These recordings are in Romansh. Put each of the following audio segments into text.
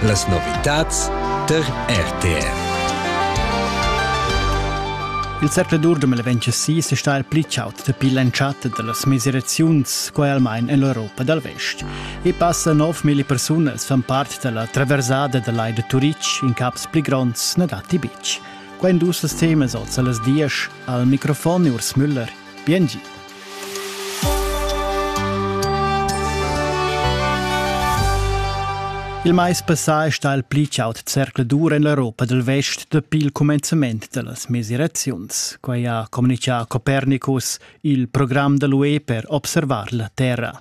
Las novitads tar RTR. Il zercladur da Meleventesì è stà il pli chaud dapi l'entschatta da las mesiraziuns, quai almain en l'Europa dal Vest. E passa 9.000 persunas fan part da la traversada da lai da Turitg, in caps pli gronds na datti betg. Quai dus temas oz a las dies al microfon Urs Müller. Bien gi. Il mais passà è stà il pli chaud zercladur en l'Europa dal vest dapi il cumenzament da las mesiraziuns. Quai ha communitgà Copernicus, il program da l'UE per observar la Terra.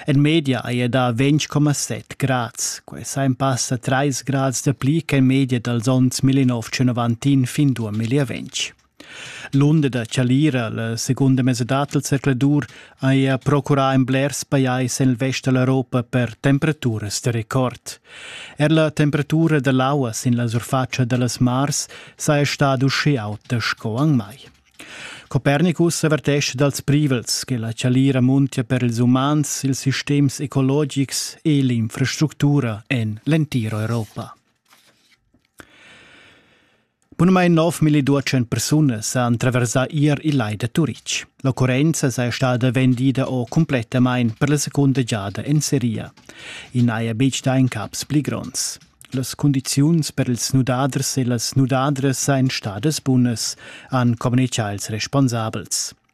En media è da 20,7 grads. Quest ha in pass a 3 grads dapli che media dals onns 1991 fin 2020. L'unda da Chalira, la segunda mesadad del zercladur, haja procurà in blers pajais en vest da l'Europa per temperaturas da record. Er la temperatura da l'aua sin la surfatscha da las mars saja stada usche auta sco an mai. Copernicus avertesce dals privels che la Chalira muntia per ils umans, ils sistems ecologics e l'infrastructura en l'entiro Europa. Bunamain 9.200 persunas han traversà ier il lai da Turitg. L'occurrenza saja stada vendida o cumplettamain per la secunda giada en seria. I n'haja betg dà incaps pli gronds. Las cundiziuns per ils nudaders e las nudadras sajan stadas bunas, han communicà ils responsabels.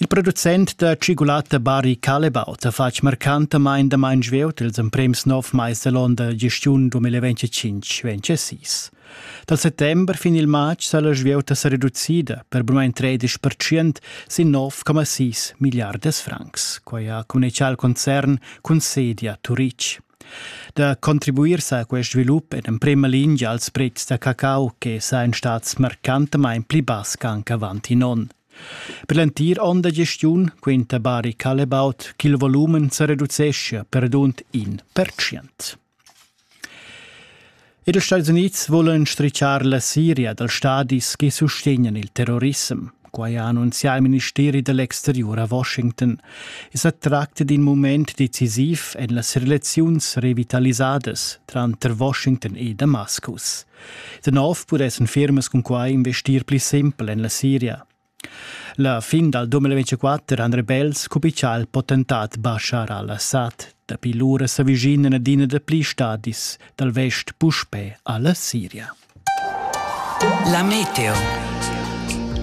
Il producent da tschigulatta Barry Callebaut ha fatg marcantamain damain svelt ils emprims nov mais da l'onn da gestiun 2025-26. Dal settember fin il matg sa la svieuta sa reducida per brumain 13% sin 9,6 milliardas francs. Quai ha communitgà il concern cun sedia Turic. Da contribuir sa a quest svilup è en emprima lingia als pretschs da cacau che sajan stats marcantamain pli bass ch'anc avant in onn. Per l'entir onn da gestiun quinta Bari Callebaut ch'il volumen sa reduceschia perdunt in pertschient. Ed ils Stats Unids vulan strichar la Siria dals stadis che sustegnan il terrorissem. Quai ha annunzià il ministeri dell'exterior a Washington. Es sa tracta d'in moment decisiv en las relaziuns revitalisadas tranter Washington e Damascus. Da nov pudessan firmas cun quai investir pli simpel en la Siria. La fin dal 2024 han rebels cupichà il potentat Bashar al-Assad. Dapi lura s'avvicinan adina da pli stadis dal vest puspè a la Siria. La meteo.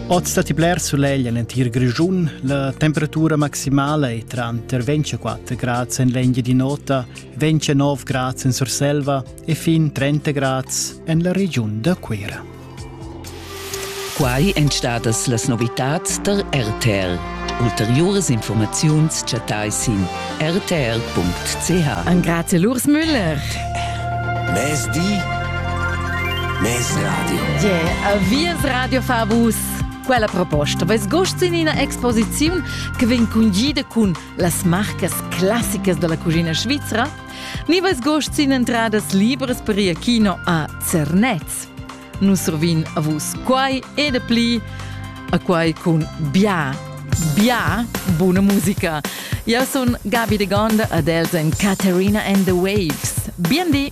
Oz datti bler sulegl en entir Grischun. La temperatura maximala è tranter 24 grads en l'Engia di Nota, 29 grads en Surselva e fin 30 grads en la regiun da Cuira. Quai èn stadas las novitads da RTL. Ulteriuras informaziuns chattai sin rtr.ch. Angrazia Lurs Müller. Mezdi, Mezradio. Yeah, avias Radio Favus. Quella proposta vess gust in ina exposiziun che vegn cungida cun las marcas classicas della cucina svizra? Ni vess gust sin entradas libras per ir kino a Zernez? Nus survin a vus quai e de pli a quai cun bia, bia buna musica. Eu sun Gabi de Gonda ad els en Caterina and the Waves. Bien di!